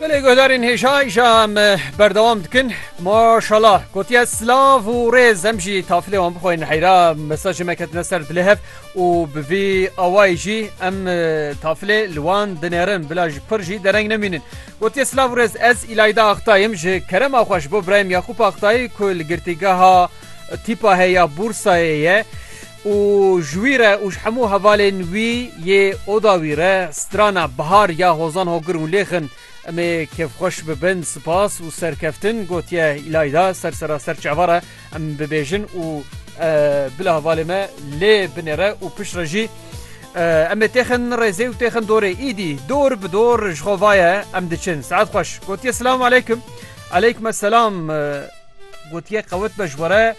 Belê guhdarên hêja îşa em berdewam dikin maşala gotiye silav û rêz em jî tafilê wan bixwein heyra mesajê me ketine ser dilê hev û bi vî awayî jî em tafilê li wan dinêrin bila ji pir jî dereng nemînin gotiye silav û rêz ez îlayda axtayim ji kerema xwe ji bo birayim Yaqûp Axtayî ku li girtîgeha tîpa heya bûrsayê ye Û ji wî re û ji hemû hevalên wî yê oda wî re strana Bihar ya Hozan Hogir û Lêxin em ê kêfxweş bibin, sipas û serkeftin gotiye Îlayda. Ser seraser çava re em bibêjin û bila hevalê me lê binêre û pişt re jî em ê têxin rêzê û têxin dorê. Îdî dor bi dor ji xwe vaye em diçin. Saet xweş gotiye Silamu Eleykum. Eleykum Eselam. Gotiye qewet be ji we re.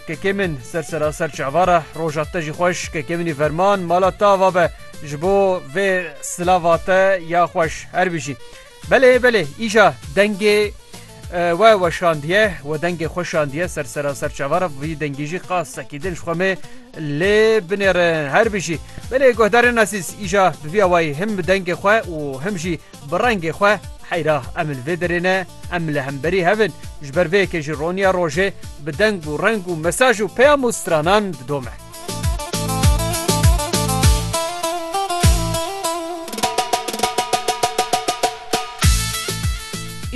Kekê min ser seraser çavara roja te jî xweş kekê minî verman mala te ava be ji bo vê silava te ya xweş her bijî belê belê îja dengê we weşandiye we dengê xweşandiye ser seraser çavara vî dengî jî qas sekî din ji xwe me lê binêrin her bijî belê guhdarên nesîz îja bi vî awayî him bi dengê xwe û him jî Bi rengê xwe heyra em li vê derê ne, em li hemberî hev in, ji ber vê yekê jî roniya rojê bi deng û reng û mesaj û peyam û stranan didome.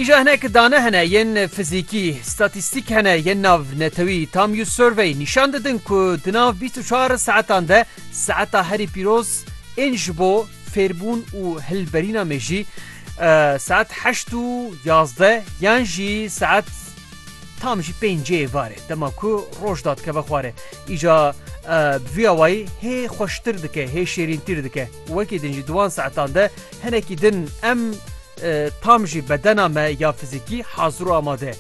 Îja hinek dane hene yên fizîkî, statîstîk hene yên navnetewî, Tamyu Survey, nîşan didin ku di nav bîst û çar saetan de saeta herî pîroz ên ji bo fêrbûn û hilberîna me jî saet heşt û yazdeh yan jî saet tam jî pêncê yê varê dema ku roj dadikeve xwarê îca bi vî awayî hê xweştir dike hê şêrîntîr dike wekî din jî di wan saetan de hinekî din em tam jî bedena me ya fizîkî hazir û amade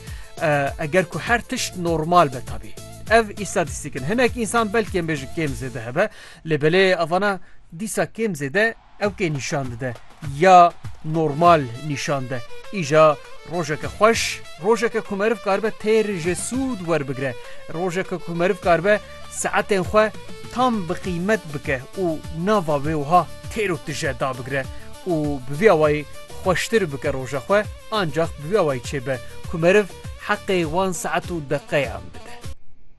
eger ku her tişt normal be tabî ev îstatîstîk in hinek însan belkêm bêjin kêm zêde hebe Lê belê avana dîsa kêm zêde ew kê nîşan dide ya normal nîşan de. Îja rojeke xweş, rojeke ku meriv karibe têr ji sûd werbigire, rojeke ku meriv karibe saetên xwe tam bi qîmet bike û nava wê wiha têr û tije dabigire û bi vî awayî xweştir bike roja xwe, ancax bi vî awayî çêbe ku meriv heqê wan saet û deqeyan bide.